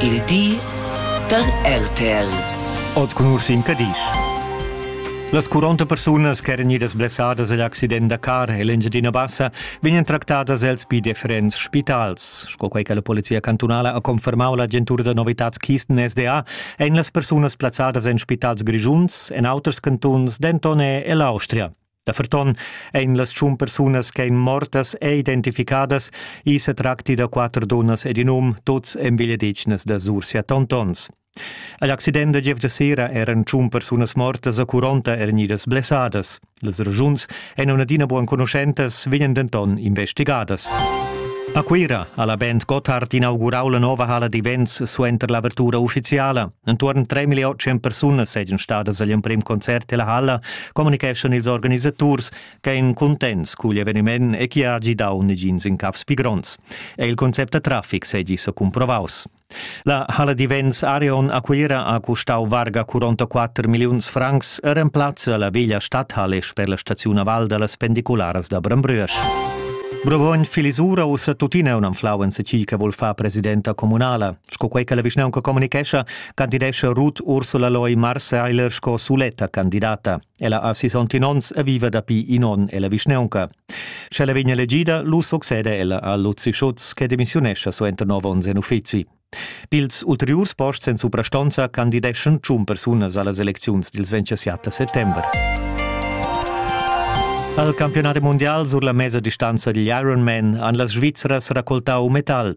Il di da RTL. Oz cun Ursin Cadisch. Las 40 persunas ch'eran idas blessadas agl accident da car en l'Engiadina Bassa vegnan tractadas els pi differents spitals. Sco quei che la Polizia cantunala ha confermau l'agentura da novitads Kisten SDA, ein las persunas plazzadas en spitals grischuns, en auters cantuns, denton er ell'Austria. Da ferton ein las tschun persunas ch'ein mortas e identificadas, i se tracti da quater dunnas ed in um, tuts envigliadetgnas da Sursia Tontons. Agl accident da giev de sera eran tschun persunas mortas a Curonta er nidas blessadas. Les ragiuns ein adina buan conoscentas, vegnan denton investigadas. A Cuira ha la Band Gotthard inaugurau la nova hala d'events suenter l'avertura ufficiala. Entuorn 3.800 persunas seigien stadas agl emprem concert della halla communicheschan ils organisaturs ch'ein contents cugl eveniment e chi ha gidau negins in caps pi gronds. E il concept da traffic segi sa comprovaus. La Halle di Vents Arion Aquira ha custau varga 44 milliuns francs e remplazza la veglia stadhalle sper la staziun a Val da las pendicularas da Brembrüsch. Brovogn Filisura ussa tuttina un anflau en se chi che vol fa presidenta comunala. Sco quei che la vischnaunca communicescha, candidescha Ruth Ursula Loy Marseiler sco suletta candidata. Ella ha 60 onns e viva dapi in onn ella vischnaunca. Sche la vegn elegida, lu succede ella a Luzi Schutz che demissiunescha suenter nov onns en uffizi. Pils ulteriurs posts en suprastonza candideschan tschun persunas allas elecziuns dils 27 settember. Al campionat mundial sur la mesa distanza digl Ironman han las Svizras raccoltau metal.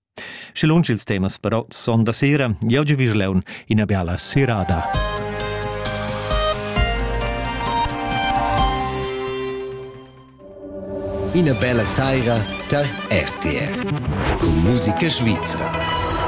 Sche lunsch ils temas però son da sera, jau gi vis leun ina biala serada. Ina bella saira tar RTR. Con musica svizra.